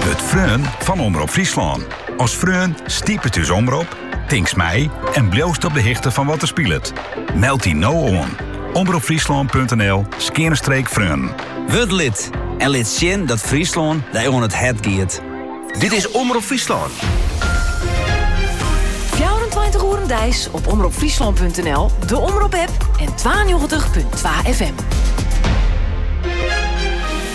Wurd freon fan Omrop Fryslân. As freon stipet ús omrop, tinkst mei en bliuwst op de hichte fan wat der spilet. Meld dy no oan, omropfryslân.nl skeane streek freonen. Wurd lid en lit sjen dat Fryslân dy oan it hert giet. Dit is Omrop Fryslân. 24 oeren deis op omropfryslân.nl, de Omrop-app en 92.2 FM.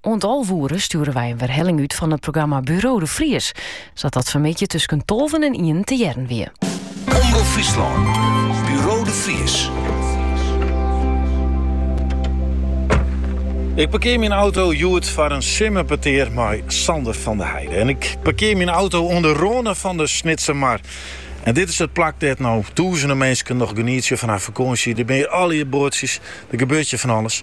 Oant alve oere stjoere wy in werhelling út fan it programma Buro de Vries, sa't dat fanmiddei tusken tolven en ienen te hearren wie. Omrop Fryslân, Buro de Vries. Ik parkear myn auto hjoed foar in simmerpetear mei Sander van der Heijden. En ik parkear myn auto oan 'e râne fan de Snitser Mar. En dit is it plak dêr't no tûzenen minsken noch genietsje fan har fakânsje. Der binne allegear boatsjes, der gebeurt hjir fan alles.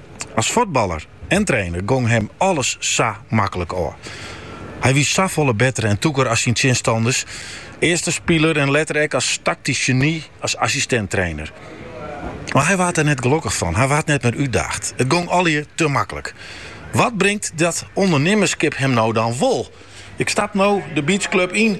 As fuotballer en trainer gong him alles sa maklik ôf. Hy wie safolle better en tûker as syn tsjinstanners, earst as spiler en letter ek as taktysk geny as assistint-trainer. Mar hy waard der net gelokkich fan, hy waard net mear útdaagd. It gong allegear te maklik. Wat bringt dat ûndernimmerskip him no dan wol? Ik stap no de beachclub yn.